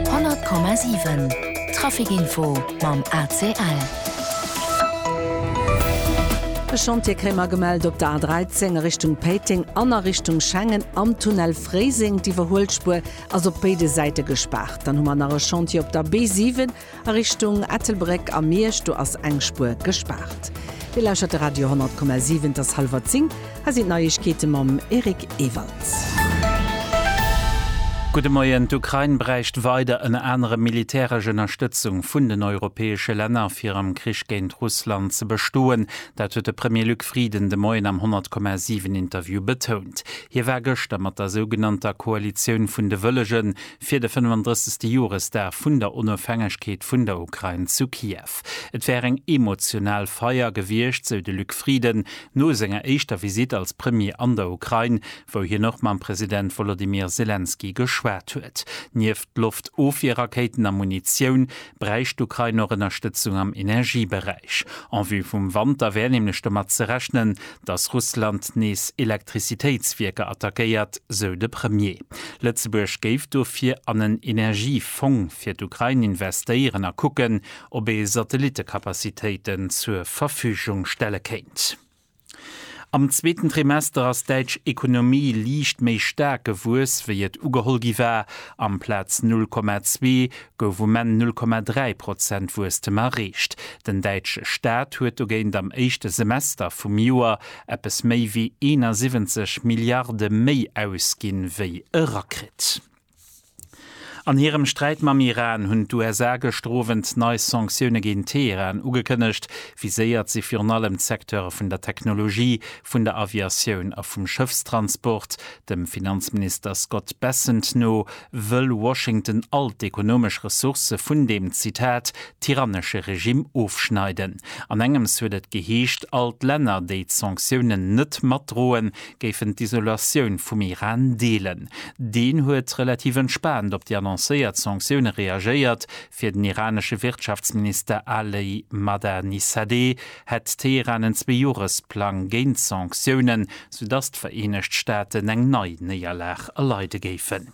100,7 Trafic Info mam ACL. E Chantier kréie mer gemellt op der A13 a Richtung Péiteng an a Richtung Schengen am Tunnel Fréiseng. D'Iwwerhuelspuer ass op béide Säite gespaart. Dann hu mer nach e Chantier op der B7 A Richtung Ettelbréck a Miersch, do ass eng Spuer gespaart. Dir lauschert de Radio 10,7, et ass hallwer 10, hei sinn d'Neiegkeete mam Eric Ewald. Gudde Moien, D'Ukrain bräicht weider ënner anerem militäresch Ënnerstëtzung vun den europäesche Länner, fir am Krich géint Russland ze bestoen. Dat huet de Premier Luc Frieden de Moien am 10,7 Interview betount. Hie war gëschter mat der sougenannter Koalitioun vun de Wëllegen fir de 35. Joresdag vun der Onofhängegkeet vun der Ukrain zu Kiew. Et wär eng emotional Feier gewiescht, sou de Luc Frieden no senger éischter Visitt als Premier an der Ukrain, wou hien och mam President Wolodymyr Selenskyj geschwat huet. Nieft Loftofwierrakéiten a Munitioun bräicht d'Ukrain och Ënnerstëtzung am Energieberäich. En vue vum Wanter wär nämlech domat ze rechnen, datt Russland nees Elektrizitéitswierker attackéiert, sou de Premier. Lëtzebuerg géif dofir an en Energiefong fir d'Ukrain investéieren a kucken, ob ee Satellitekapazitéiten zur Verfügung stelle kéint. Am zweeten Trimester ass d'däitsch Ekonomie liicht méi staark gewuess, wéi et ugeholl gi war. Amplaz 0,2 gouf um Enn 0,3 Prozent Wuesstem erreecht. Den däitsche Staat huet dogéint am éischte Semester vum Joer eppes méi wéi 71 Milliarde méi ausginn, wéi erakritt. An hirem Sträit mam Iran hunn d'USA gëschter Owend nei Sanktioune géint Teheran ugekënnegt. Viséiert si virun allem d'Secteure vun der Technologie, vun der Aviatioun a vum Schëffstransport. Dem Finanzminister Scott Bessent no wëll Washington all d'ekonomesch Ressourcë vun deem, Zitat, tyrannesche Regimm ofschneiden. An engems huet et geheescht, all d'Länner, déi d'Sanktiounen net matdroen, géifen d'Isolatioun vum Iran deelen. Deen huet relativ entspaant op déi annoncéiert Sanktioune reagéiert, fir den iranesche Wirtschaftsminister Ali Mahdanisadeh hätt Teheran en Zweejoeresplang géint d'Sanktiounen, soudatt d'Vereenegt Staaten eng nei Néierlag erleide géifen.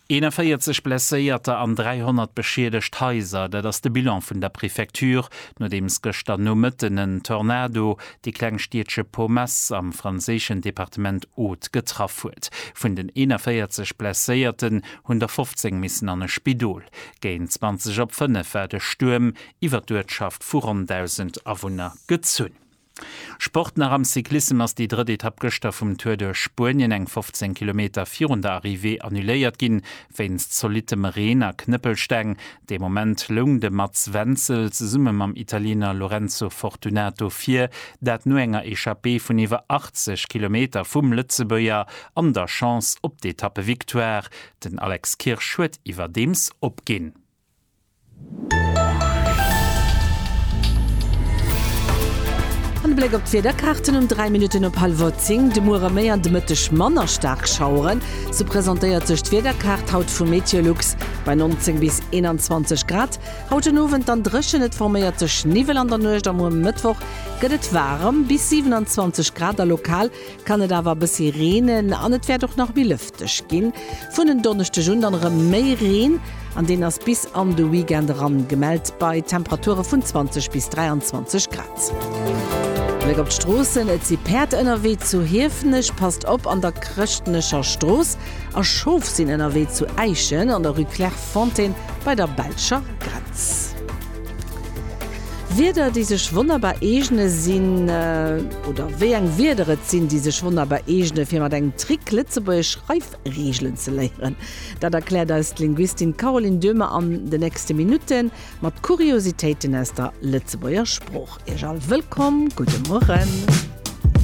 41 Blesséierter an 300 beschiedegt Haiser, dat ass de Bilan vun der Prefecture, nodeems gëschter Nomëtten en Tornado déi kleng Stiedche Pommes am franséischen Departement Aude getraff huet. Vun den 41 Blesséierten hunn der 15 missen an e Spidol. Géint 20 op 5 war de Stuerm iwwer d'Uertschaft vu ronn 1.000 Awunner gezunn. Sport nach am Cyclissem ass déi drëtt Etapp gëschter vum Tour duerch Spuenien eng 15 Kilometer virun der Arrivée annuléiert ginn, wéinst zolittem Reen a Knëppelsteng. Dee Moment loung de Mats Wenzel zesumme mam Italiener Lorenzo Fortunato vir, dat no enger Echappée vun iwwer 80 Kilometer vum Lëtzebuerger an der Chance op d'Etappevictoire. Den Alex Kirsch huet iwwerdeems opginn. An de Bléck op d'Wiederkaarten, Um 3 Minutten op hallwer 10, de Muere méi an de Mëtteg manner staark Schaueren. Sou presentéiert sech d'Wiederkaart haut vu Meteolux. Bei 19 bis 21 Grad haut den Owend dann dréchen, et forméiert sech Niwwel an der Nuecht a muer Mëttwoch gëtt et waarem bis 27 Grad a lokal kann et awer e bëssi reenen an et wäert och nach méi lëfteg ginn. Vun en Donneschdeg un dann erëm méi Reen an deen ass bis an de Weekend eran gemellt bei Temperature vun 20 bis 23 Grad. Bléck op d'Stroossen, Et si Päerd ënnerwee zu Hiefenech, passt op an der Chrëschtnecher Strooss, a Schof sinn ënnerwee zu Äischen an der Rue Clairefontaine bei der belscher Grenz. Wierder déi sech wonnerbar eegne sinn, oder wéi eng Wierder et sinn, déi sech wonnerbar eegne fir mat engem Trick lëtzebuergesch Schreifreegelen ze léieren, dat erkläert eis d'Linguistin Caroline Döhmer an de nächste Minutte mat Kuriositéiten aus der Lëtzebuerger Sprooch. Iech all wëllkomm, gudde Mueren.